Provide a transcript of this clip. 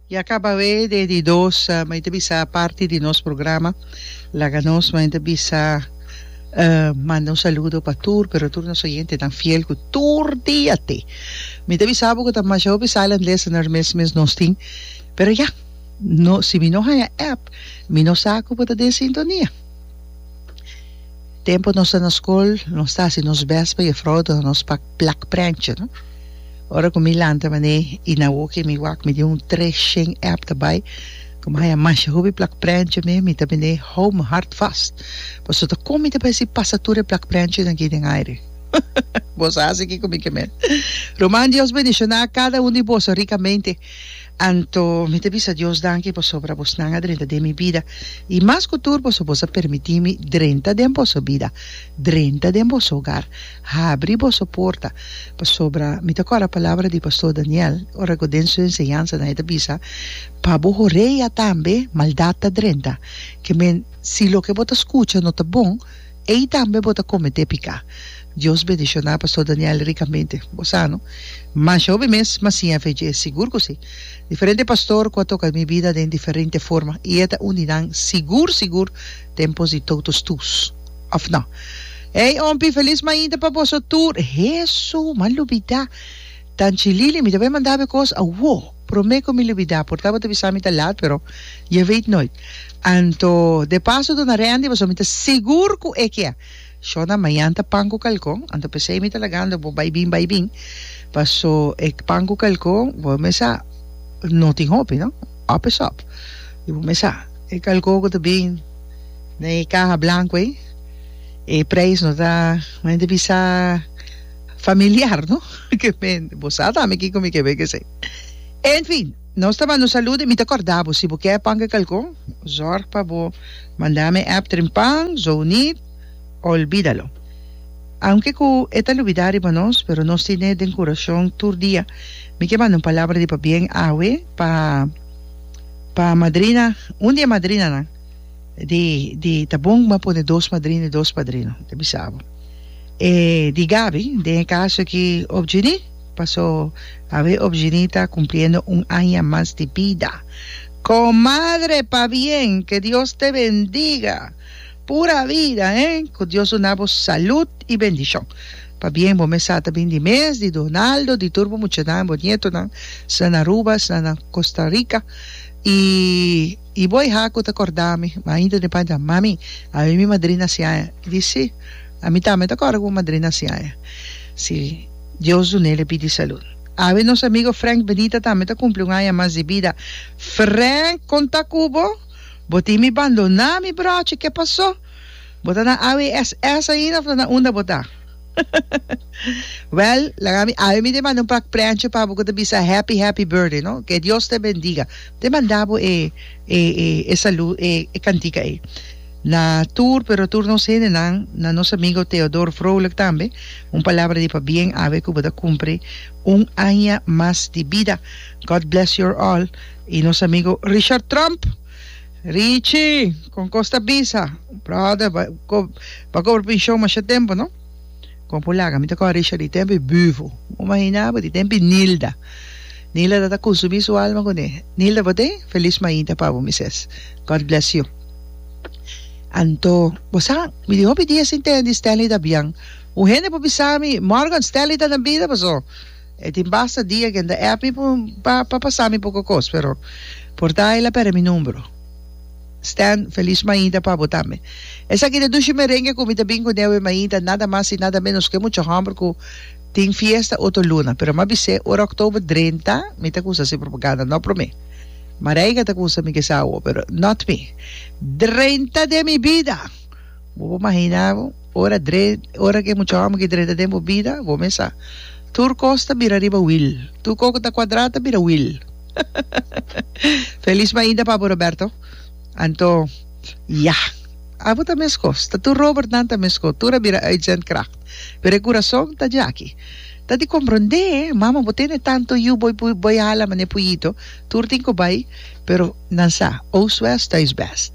Ya caba awé de di dos mei ta bisa parti di nos programa laga nos mei ta bisa manda un saludo pa tur pero tur nos oyente tan fiel cu tur dia te mi ta bisa bo cu ta masha hopi sala and listeners mes mes nos tin pero ya no si mi no haya app mi no sa cu bo ta den sintonia tempo nos ta na school nos ta haci nos best pa e frou nos pa plak prèntje no. Ora ku mi lanta man'é i na woki mi wak mi di un tres shen èp ta bai ku mi haña masha hopi plak prèntje mi mi ta ben'é hou mi hart fas pasobra kon mi ta bai si pasa tur e plak prèntjenan aki den aire bo sa hasi kiko mi ke mel ruman Dios bendishoná kada un di boso rikamente anto mi ta bisa Dios danki pasobra bosnan a drenta den mi bida i mas ku tur pasobra boso a permitimi drenta den boso bida drenta den boso ogar. Habri boso porta, pasobra mi ta kòrda palabra di Pastor Daniel, ora ku den su enseñansanan e ta bisa, Pa bo horea tambe maldat ta drenta. Ke men, si loke bo ta skucha no ta bon, ei tambe bo ta kometé piká. Dios bendishoná Pastor Daniel rikamente. Bo sano. Masha hopi mes, ma siña fe dje, sigur ku si. Diferente pastor ku a toka mi bida den diferente forma, i e ta un di nan sigur sigur den pos di toutos tus. Of no. Ey ompi feliz mañita pa boso tur. Hesu, m'a lubida. Tanchi Lili, mi ta bai mandabe cos awo. Prome cu mi lubida, por ta bo ta bisa mi ta laat pero je weet nooit. Anto de paso dona Randy paso mi ta segur cu e kia shona mañanta pan cu calcon, anto pesey mi ta lagando bo bai bin bai bin paso e pan cu calcon bo mesa no tin hopi no, up is up. Y bo mesa e calcon cu ta bin. den e kaha blanku ei e preis no ta mi no ta bisa familiar no ke mi bo sa ta ami kiko mi ke bai kesei enfin nos ta bando salude mi ta korda bo si bo ke pan ke kalkon zorg pa bo manda mi app tren pan zounit olbidalo aunke ku e ta lubida riba nos pero nos tine den kurashon tur dia mi ke manda un palabra di pabien awe pa. pa madrina un di e madrinanan di di ta bon bo a pone dos madrina y dos padrino ta bisa bo e di Gaby den e caso aki opgini paso awe opgini ta cumpliendo un aña mas di bida comadre pa bien que Dios te bendiga. Pura vida he cu Dios duna bo salud y bendicion pa bien bo mes sa ta bin di mes di Donaldo di tur bo muchanan bo nietonan sna na Aruba sna na Costa Rica y y bo eha cu ta cordami ma ainda te panta mami awe mi madrina siaña y di si ami tambe ta corda cu bo madrina siaña si Dios dunel e bidi salud awe nos amigo Frank Benita tambe ta cumpli un aña mas di bida Frank con ta cu bo. Bo tin mi bandoná mi bròchi ke pasó? Bo ta na AWSS ainda of na unda bo ta? Wèl laga mi awe mi te manda un pak prèntchi pa bo ku ta bisa happy happy birthday no ke Dios te bendiga te manda bo e e e e salu e e kantika ei na tur pero tur nos hendenan na nos amigo Theodor Vrolijk tambe un palabra di pabien awe ku bo ta kumpri un aña mas di bida God bless your all Y nos amigo Richard Trump. Richie, con cos ta bisa? Brother, ba, co, ba cobra pensioen masha tempo, no? Con por laga, mi ta coge Richard di tempi Büvo. Bo imagina bo, di tempi Nilda. Nilda ta ta consumi su alma con e. Nilda, bo te? Feliz mainta pa bo, mi ses. God bless you. Anto, bo sa, mi tin hopi dia sin tende Stanley Dabian. Un hende por bisa mi, Morgan, Stanley ta na bida, paso. E tin basta dia cu enta app mi pa pa pasa mi poco cos pero por ta el a perde mi numero Stan feliz maita pa bo tambe esaki ta dushi merengue cu mi ta bin cu neu e maita nada mas y nada menos cu e mucha homber cu tin fiesta otro luna pero ma bise ora october drenta mi ta cusa si propaganda no prome Mareika ta cusa mi kesa awo pero not mi drenta de mi bida. Bo por mahina bo, ora dre, ora ku e mucha hòmber ki drenta den bo bida, bo mes sa, tur kos ta bira riba wil, tur kos ku ta kuadrá ta bira wil. Felis mainta Papo Roberto. Anto, ya. Abo ta meskos, ta tur Robert nan ta meskos, tur a bira uitzend kracht, pero e kurason ta djaki. Ta di komprondé, mama, bo tene tantu yu, bo bo bo hala manera puyito, tur tin ku bai, pero nan sa, Oostwest thuisbest.